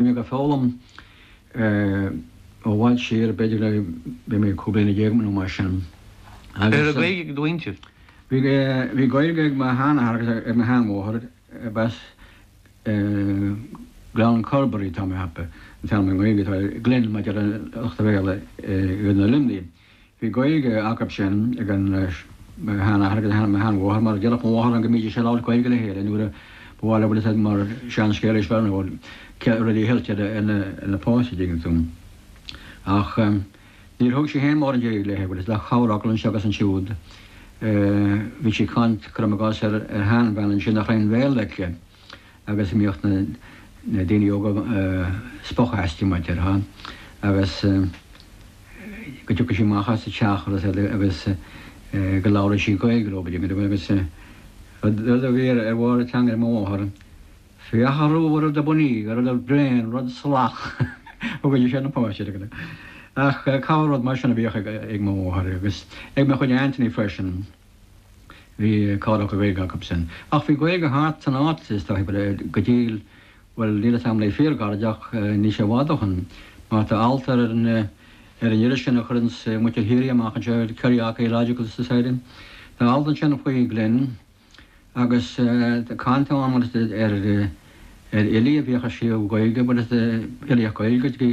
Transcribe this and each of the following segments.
Bhí mé ag foghlaim i bhfad siar, b'fhéidir ó bhí mé cúig bliana déag nó mar sin. Agus. An raibh Gaeilge ag do mhuintir? Bhí Gaeilge ag mo sheanathair agus ag mo sheanmháthair, b'as Gleann Corbraí, tá mé ceaptha, an t-ainm i nGaeilge atá air, Glin mar a deir lucht a' Bhéarla i gContae Luimnigh. Bhí Gaeilge acub sin ag an shean-athair agus an shean-mháthair, mar deireadh mo mháthair liom go mbídís ag labhairt Gaeilge le chéile nuair a ba mhaith leo bhuel mar seanscéal is fearr nó céad rudaí a cheilt ar na páistí, tuigeann tú. Ach níor thug sí féin mórán Gaeilge léithe, bhuel is le corrfhocal anseo agus ansiúd a bhíodh sí ag caint, cuirim i gcás ar sheanbhean ansin nach raibh aon bhéarla aici, agus a mbíodh na daoine óga ag spochadh aisti, mar a déarfá, agus go dtiocfadh sí amach as a teach agus go labhradh sí Gaeilge leo, go deimhin, agus rud a bhí ar bharr a teanga ag mo mháthair, féach a ruadh, rud ab fhunny, rud bréan, rud salach a thugadh sí ar na páistí. Ach corr-rud mar sin a bhíodh ag mo mháthair, agus ag mo chuid aintiní freisin. Bhí cáil go Gaeilge acu sin. Ach bhí Gaeilge thart san áit, is dóichí, go dtí, bhuel, níl 'fhios a'm le fíorghairid ach níl sé i bhfad ó shin. Mar tá alt ar an iris sin a chuireanns muintir Chiarraí amach anseo, Kerry Archaeological Society, tá alt ansin faoi Glin agus tá caint ann, bhuel, is ar fhilí a bhíodh ag scríobh Gaeilge, bhuel, is filíocht Ghaeilge, go dtí,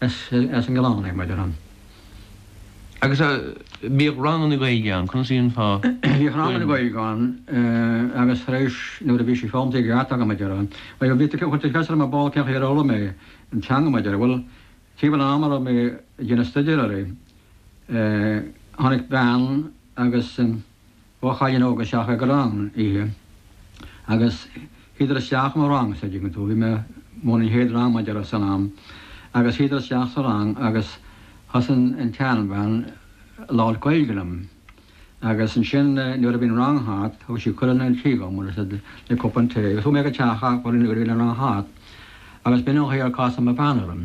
as an gclann é mar a deirim. Agus bhíodh ranganna Gaeilge ann, conas a dhéanfá fuinneamh? Bhíodh ranganna Gaeilge ann agus tar éis nuair a bhí sí foghlamtha agam mar a deirim, bhuel bhí tú chuir tú ceist orm ar ball cén chaoi ar fhoghlaim mé an teanga mar a deirim. Bhuel timpeall an ama a raibh mé ag déanamh stuidéar uirthi, tháinig bean agus. Dhá chailín óga isteach ag an rang oíche agus shuíodar isteach i mo rang-sa, an dtuigeann tú. Bhí mé, bhuel, an chéad rang mar a déarfá san am, agus shuíodar isteach sa rang agus thosaigh an tseanbhean ag labhairt Gaeilge liom. Agus ansin nuair a bhí an rang thart, thug sí cuireadh chun an tí dhom, mar sin, le cupán tae. Agus chuaigh mé go teach acu nuair a bhí an rang thart. Agus b'in an chaoi ar casadh mo bhean orm.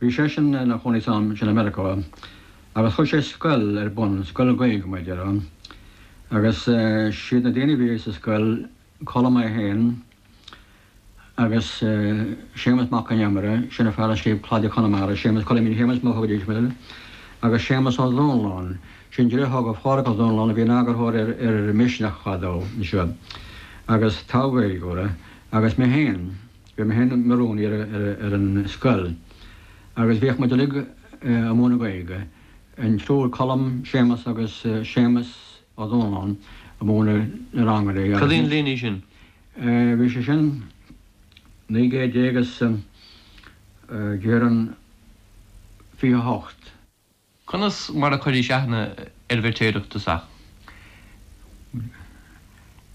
Bhí seisean ina chónaí san am sin i Meiriceá agus chuir sé scoil ar bun, scoil Ghaeilge mar a déarfá, agus is iad na daoine a bhí sa scoil, Colm é féin agus Séamus Mac Con Iomaire, sin an fear a scríobh Cladaigh Chonamara, Séamus Choilmín Shéamuis mar a thugaidís air, agus Séamus Ó Domhnalláin, sin driotháir Phádhraic Ó Domhnalláin a bhí ina eagarthóir ar Misneach fadó anseo, agus togha Gaeilgeora, agus mé féin. Bhí mé féin i mo rúnaí ar an scoil agus bhíodh muid uilig ag múineadh Gaeilge, an triúr Colm, Séamus agus Séamus Ó Donnabháin ag múineadh na rang uilig agus. Cad é an bhliain í sin? Bhí sé sin naoi gcéad déag is déarfainn fiche hocht. Conas mar a chuiris aithne ar an bhFeirtéarach i dtosach? Mh.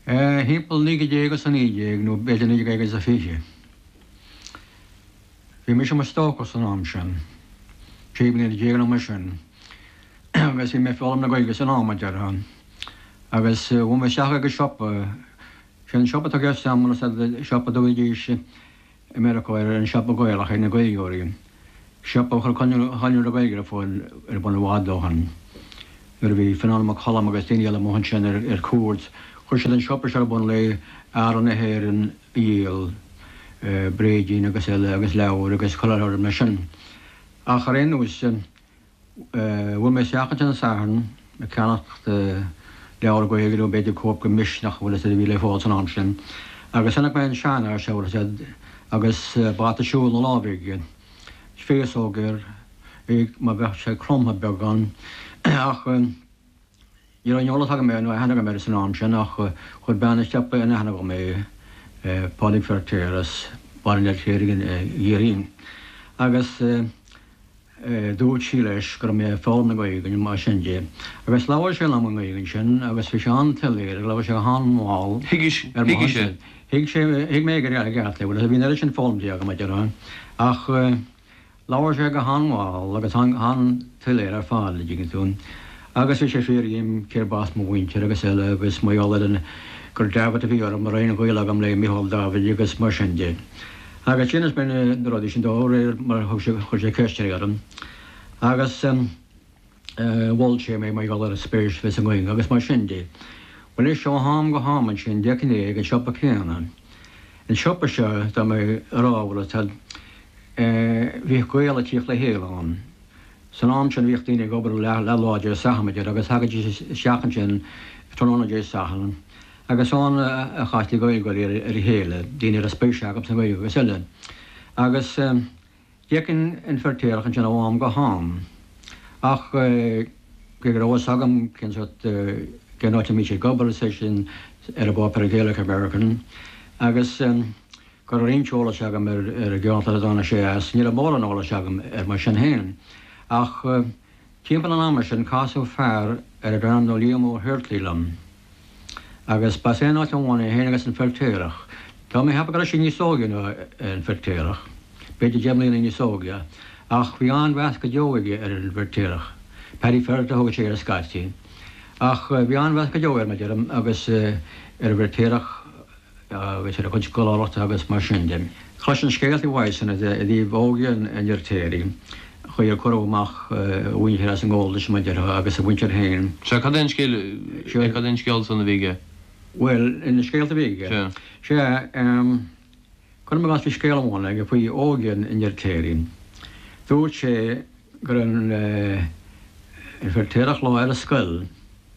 Eh. thimpeall naoi gcéad déag is a naoi déag, nó b'fhéidir naoi gcéad is a fiche. Bhí mise i mo stócach san am sin, trí bliana déag nó mar sin, agus bhí mé ag foghlaim na Gaeilge san am, a deir sé. Agus chuaigh mé isteach ag an siopa, sin an siopa atá i gceist agam, siopa a dtugaidís i Meiriceá air An Siopa Gaelach ag na Gaeilgeoirí, siopa a chuir Conradh na Gaeilge ar fáil ar bun i bhfad ó shin. Nuair a bhí Fionán Mac Coluim agus daoine eile amuigh ansin ar cuairt, chuir siad an siopa seo ar bun le earraí na hÉireann a dhíol, bréidín agus eile agus leabhair agus chuile shórt mar sin. Ach ar aon nós. Bhuail mé isteach ansin an Satharn ag ceannacht leabhar Gaeilge nó b'fhéidir cóip de Misneach bhuel is dóigh a bhí le fáil san am sin agus chonaic mé an seanfhear seo bhuel sea agus bata siúil ina lámh aige, féasóg air, é mar bheadh sé cromtha beagán ach. Ní raibh aon eolas agam air, nó aithne agam air san am sin, ach chuir bean an tsiopa in aithne dhom é, Pádraig Feirtéar, as Baile an Fheirtéaraigh i gCiarraí, agus dúirt sí leis go raibh mé ag foghlaim na Gaeilge, nó mar sin de, agus labhair sé liom i nGaeilge ansin, agus bhí sé an-tsoiléir, agus labhair sé go han-mhall, ar mo shonsa. Thuig sé, thuig mé i gceart é, bhuel, bhí an oiread sin foghlamtha agam, a deir sé, ach. Labhair sé go han-mhall agus go han-tsoiléir ar fad, an dtuigeann tú, agus bhí sé ag fiafraí dhíom cérb as mo mhuintir agus eile, agus mar gheall air gur Davitt a bhí orm an raibh aon ghaol agam le Michael Davitt agus mar sin de. Agus d'inis mé na rudaí sin dó, de réir mar a thug sé, chuir sé ceisteanna orm. Agus. Mhol sé mé mar gheall ar an spéis a bhí sa nGaeilge agus mar sin de. Bhuel, anois ó am go ham ansin d'fheicinn é ag an siopa céanna. An siopa seo, tá mé a rá leat, bhíodh Gaeil a' tíocht le chéile ann. San am sin bhíodh daoine ag obair leath-lá Dé Sathairn, b'fhéidir, agus thagaidís isteach ansin tráthnóna Dé Sathairn agus is ann a chastaí Gaeilgeoirí ar a chéile, daoine a raibh spéis acu sa nGaeilge agus eile. Agus. D'fheicinn an Feirtéarach ansin ó am go ham, ach cé go raibh a fhios agam cén sórt, cén áit a mbíodh sé ag obair, is é sin, ar an bpáipéar Gaelic American, agus go raibh roinnt eolais agam ar an gceantar a dtáinig sé as, ní raibh mórán eolais agam air mar sin féin, ach. Timpeall an ama sin casadh fear arb ainm dó Liam Ó hUirtlí liom, agus ba as aon áit amháin é féin agus an Feirtéarach, tá mé a cheapadh go raibh sé níos óige ná an Feirtéarach, b'fhéidir deich mbliana níos óige, ach bhí an-mheas go deo aige ar an bhFeirtéarach. Paddy Ferriter a thugadh sé air scaití, ach bhí an-mheas go deo air, mar a deirim, agus ar an bhFeirtéarach. agus ar a chuid scoláireachta agus mar sin de. Chloisinn scéalta uaidhsean i dtaobh óige an Fheirtéaraigh, chaoi ar cuireadh amach a mhuintir as an ngabháltas, mar a déarfá, agus a mhuintir féin. Sea, cad é an scéal, sea, cad é an scéal san a bhí aige? Bhuel, na scéalta a bhí aige? Sea. Sea, cuirim i gcás bhí scéal amháin aige faoi óige an Fheirtéaraigh. Dúirt sé go raibh an Feirtéarach lá ar scoil,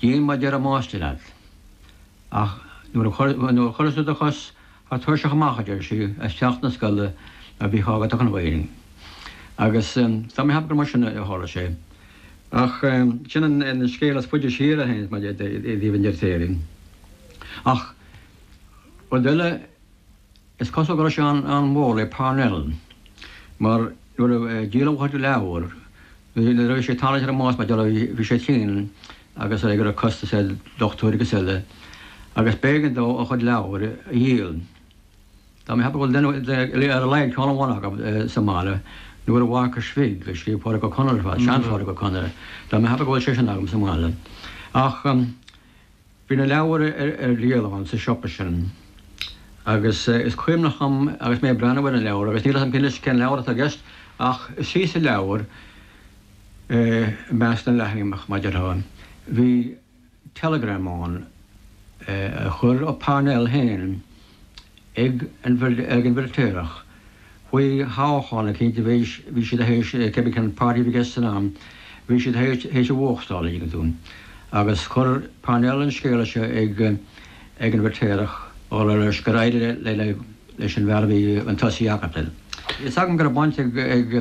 Déan mar a deir an máistir leat. Ach nuair a chuireas tú do chos thar tairseach amach, a deir sí, as teach na scoile a bhíodh agat achan Mhaidin. Agus tá mé a cheapadh gur mar sin a tharla sé. Ach sin an scéal is faide siar a théanns mar a déarfá i dtaobh an Fheirtéaraigh. Ach rud eile Is cosúil go raibh sé an-mhór le Parnell, mar nuair a díoladh a chuid leabhar, nuair a bhí sé ag tarraingt ar an mbás mar gheall ar bhí sé tinn agus ag iarraidh costas ar dochtúir agus eile, agus b'éigean dó a chuid leabhar a dhíol. Tá mé a cheapadh go bhfuil ar a laghad ceann amháin agam sa mbaile, Nóra Mharcais Bhig, a scríobh Pádraig Ó Conaire fadó, seanPhádraig Ó Conaire, tá mé a cheapadh go bhfuil sé sin agam sa mbaile. Ach Bhí na leabhair ar díol ann sa siopa sin agus is cuimhneach dom agus mé ag breathnú ar na leabhair, agus níl a fhios agam anois cén leabhar atá i gceist, ach thíos sa leabhar, i measc na leathanaigh, mar a déarfá, bhí teileagram ann a chuir Parnell féin ag an bhFeirtéarach. Faoi thoghchán eicínt a bhí bhí siad théis, cé bith cén páirtí a bhí i gceist san am, bhí siad théis théis a bhuachtáil, an dtuigeann tú. Agus chuir Parnell an scéala seo ag ag an bhFeirtéarach, á rá leis gur éirigh le le le leis an bhfear a bhí chun tosaigh acu. Tá a fhios agam go raibh baint ag ag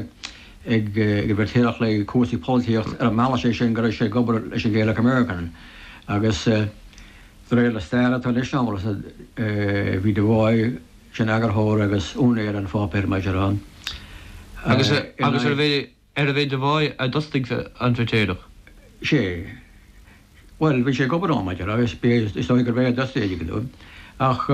ag ag an bhFeirtéarach le cúrsaí polaitíocht ar an mbealach sé sin go raibh sé ag obair leis an Gaelic American agus de réir na staire atá anois agamsa, bhí Devoy, Sin eagarthóir agus úinéir an pháipéir mar a déarfá. Agus arbh é Devoy a d'fhostaigh an Feirtéarach? Sé. Bhuel, bhí sé ag obair ann mar a déarfá agus is dóigh gurbh é a d'fhostaigh é, ach.